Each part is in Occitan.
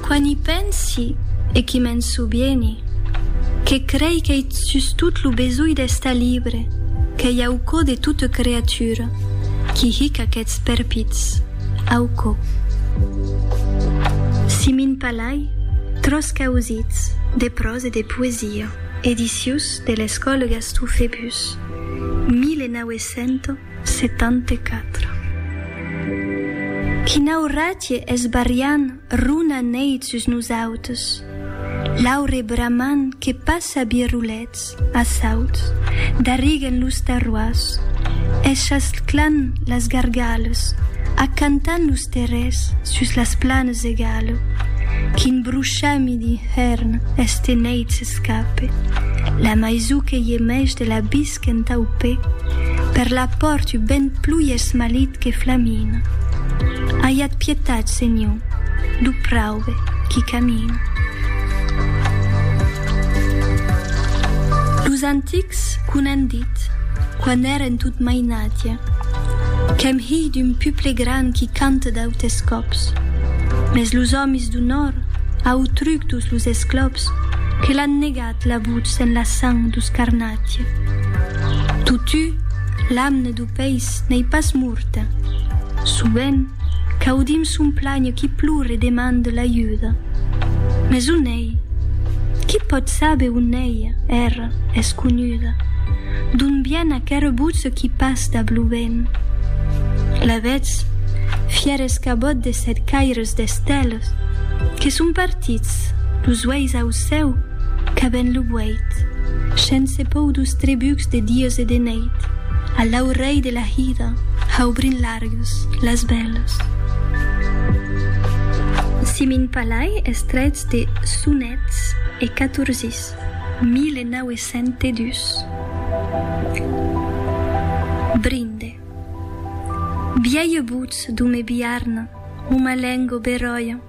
Quan i pensi, e qui me'n sobieni, que crei qu'ei sustot lo besonh d'estar libre qu'ei au cò de tota creatura qui hic aqueths perpits au cò. Si min palai, tros causits, de pròs e de poesia, edicius de l'Escòle Gastó Febus, 1900. 74. Quina auratge es barriant runa neit sus nosautes, l'aure bramant que passa birrolets a sauts, darriguen los terroirs, eschasclant las gargales, acantant los terrers sus las planes egale, quin bruchami d'inhèrn este neit s'escape, la maisou que gemèch de l'abis Qu'entau pe, per la pòrt u ben plui esmalit que flamina. Aiat pietat, senhor, d'u praube qui camina. Los antics qu' un an dit, quan èren tot mainatge, qu'èm hilh d'un puple gran qui canta d'autes còps, mes los òmis d'u nòrd, au truc d'us los esclops, que l'an negat, Cat la votz en la sang du scarnatge. Totu, l'amne du peis n'ei pas morta. Sovent, qu'audim son planh qui plor e demande l'ajuda. Mes on ei? Qui pòt saber on ei? Era es conuda. D'on vien aquera votz qui pas dab lo vent? La vetz? Fièr escabòt de sèt caires d'esteles que son partits, los uèis aucèls. Cèu, qu'a ben lo vuèit. Shens se pòu dus trebucs de dies e de nèit, a l'aurèi de la hida, haubrin largues, las veles. Si min palai es trèits de Sonets e catorzis, 1902. Brinde. Biaie butz d'u me biarn, u ma lengo beròia.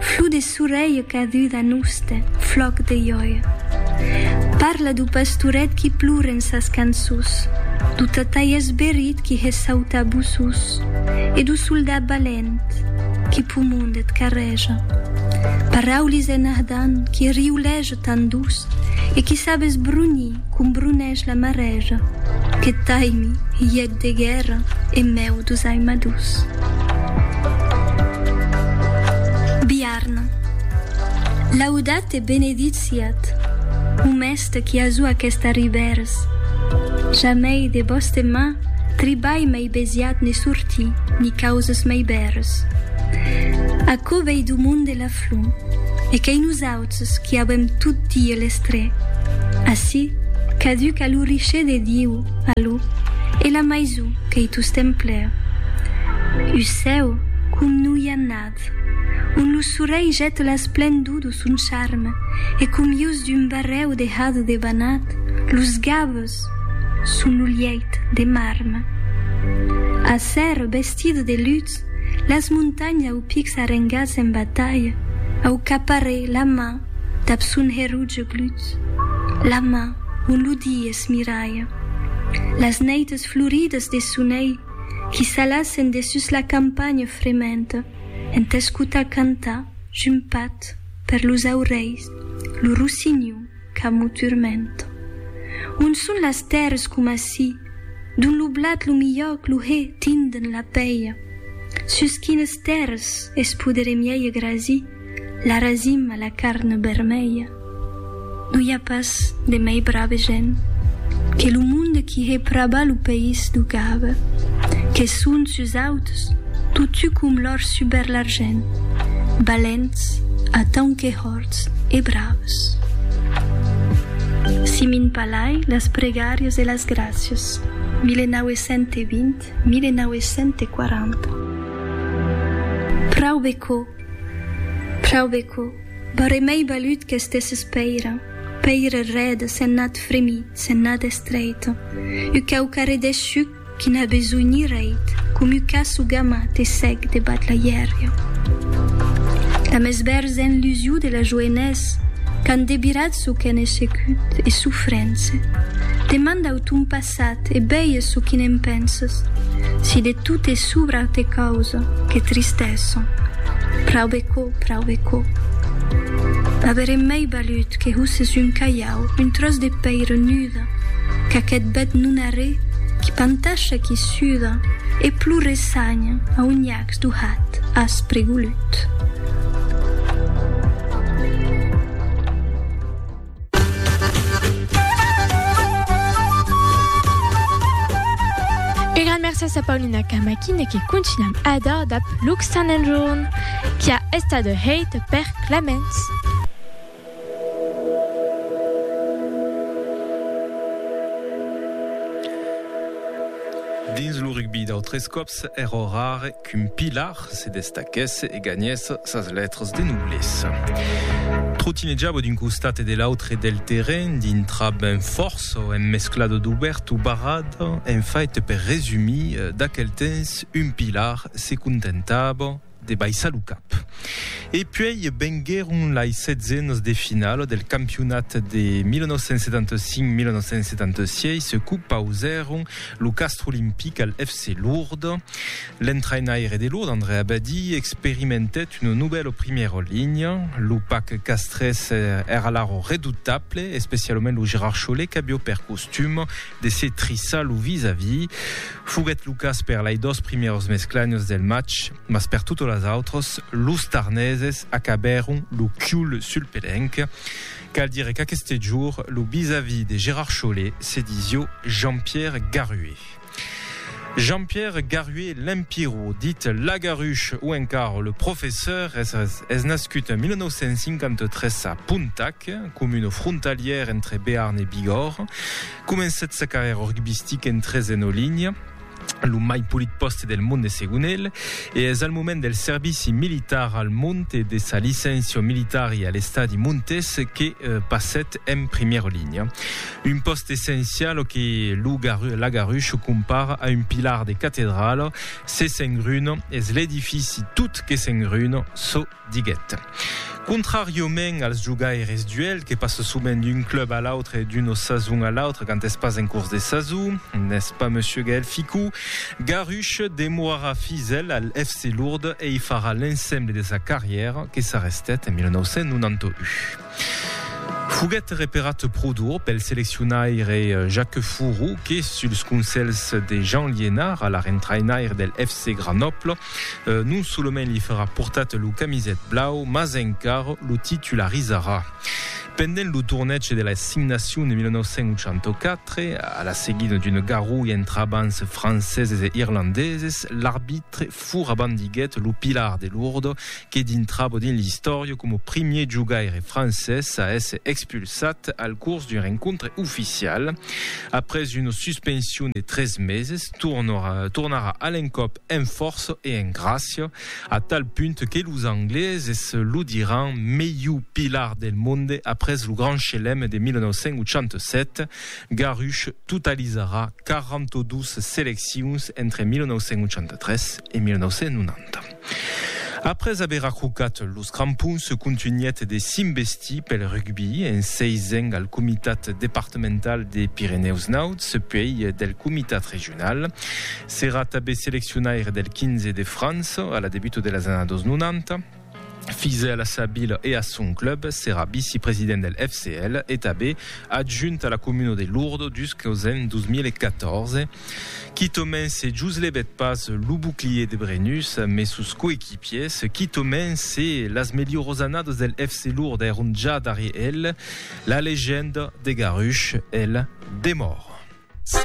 Flor de sorelh caduda noste flòc de iòia Parla do pastoret qui plore en sas cançons Do tatai esberit qui hè sauta boços E do soldat balent qui pumond et carreja Paraulis en ardan qui riulèj Tan doç, e qui sap esbrunhir com brunhèsh la marèja, que taimi, hièt de guèrra, en mèu dus aimadús. Biarna. Laudat e benedit siat, o mèste qui azú aquesta ribèrs. Jamèi de bòste mà tribalh mèi besiat ne sortí, ni causes mèi bèrs. Aquò vèi du monde la flor, e qu'ei nosaut. Nosaltres qu'i avèm tot die les tres. Ací, caduc a lo richer de Diu, a lo, e la maison qu'ei tostemp plèu. U cèu com no i a nad, on lo sorelh jèt l'esplendor do son charme e com ius d'un barrèu de hado de banat, los gaves son lo lièit de marme. Acer, vestida de lutz, Las montanhas au pics arrengats en batalha, au caparè la man dab son herotge glut, la man on lo die es miralha. Las neites florides de sonelh qui s'alassen de sus la campanha frementa en t'escotar cantar jumpat per los aurelhs lo rossinhon, Qu'amo turmento. On son las tèrres coma si, dont lo blat lo milhòc lo hè tinden la pèia? Sus quines tèrres es podere mièi grasir la rasim a la carn bermèia? No i a pas de mèi brave gent que lo monde qui hè praba lo país do Gave, que son sus auts totu com l'òr suber l'argent, balents atant que hòr. forts e braus. Si min palai las pregàrias e las gràcias, 1920, 1940. Praube quò, praube quò, barrè mei balut qu'estèsses pèira, pèira rèda, sennat fremit, sennat estreita, u quauquarredè shuc, Qui n'a besoin ni reit, comu ca su gamma te sèc debat la hièria. La mès bèrza enlusiu de la joenès, qu'an debirat su qu'è nesecut e su frence. Te mandau ton passat e beies su qui ne'n penses, si de tot e subra te causa, que tristessa. Praube co, praube co. M'averem mei balut que husses un calhau, un tròç de pèira nuda. Qu'aqueth bèth non arré qui pantasha, qui suda e plore sanya a un nhacs d'u hat aspre golut. Ua gran mèrcias a Paulina Camaquin que contunham a dar dab Luc Saint-Enjorn qui a estat hèit per Clements. Dins lo rugbi d'autres còps èra rare qu'un pilar se destaquèsse e ganhèsse sas letras de noblesa. Trotinejava d'un costat e de l'autre del terrenh, dintrab un fòrç o un mesclado d'obèrt o barrat, en fait per resumir, d'aquel temps un pilar se contentava, de baissar lo cap. E puèi venguèron lai setzens de finala del campionat de 1975-1976 qu'u pausèron lo castre olimpic al FC Lourdes. L'entrainaire de Lourdes, André Abadie, experimentèt una novèla primièra linha. Lo pac castrés èra alara redutable, especialament lo Gerard Chollet qu'aviá per costum de se trissar lo vis-a-vis. Foguèt lo cas per lai dos primièrs mesclanios del match, mas per totas las autras, los tarneses acabèron lo cul sul pelenc. Cal dire qu'aqueste jorn, lo vis-a-vis de Gerard Chollet se disió Jean-Pierre Garué. Jean-Pierre Garué Lempirro, dit Lagaruche o encara le Professor, es nascut en 1953 a Pontac, comuna frontalièra entre Bearn e Bigòrre. Comencèt sa carrièra rugbistica en tresen o linha, lo mai polit pòste del mond de segon el, e es al moment del servici militar al mond e de sa licéncia militari a l'estadi Montés que passèt en primièra linha. Un pòst essencial o que lo Lagarush compara a un pilar de catedrala, se s'engruna, es l'edifici tot que s'engruna, çò diguèt. Contràriament als jogaires d'UEL que passa sovent d'un club a l'autre e d'una sason a l'autra quand es pas en cors de sason, n'est-ce pas monsieur Gaël Ficou? Garush demorarà fidèl al FC Lourdes e i farà l'ensemble de sa carrièra que s'arrestèt en 1991. Foguèt reparat pro d'or pel seleccionaire Jacques Fourou que, suls conselhs de Jean Liénart, alar entrainaire del FC Grenoble, non solament li farà portar lo camiset blau, mas encar lo titularizarà. Pendent lo torneg de las 5 Nacions de 1984, a la seguida d'una garrulha entre abans franceses e irlandeses, l'arbitre fourabandiguèt lo pilar de Lourdes que dintravo dins l'istòria coma primier jogaire francés a èsser expulsat al curs d'un rencontre oficial. Après una suspension de tres meses, tornarà a l'encòp en fòrça e en gràcia, a tal punt que los angleses lo diràn melhor pilar del monde après lo Grand Chelem de 1987. Garrush totalizarà 42 seleccions entre 1983 e 1990. Après aver ajucat los crampons, contunhèt de s'investir pel rugbi, en seisent al Comitat departamental de Pirenèus Nauts, puèi del Comitat regional. S'èra tanben seleccionaire del 15 de França a la debuta de las annadas 90. Fidèl a sa vila e a son club, s'èra vicepresident del FCL e tanben adjunt a la comuna de Lourdes jusqu'aus ans 2014. Quitament se joslhebèt pas lo bouclier de Brennus, mes sos coequipiers, quitament se las melhorós annadas del FC Lourdes èron ja darrier el, la legenda de Garush, el, demòra.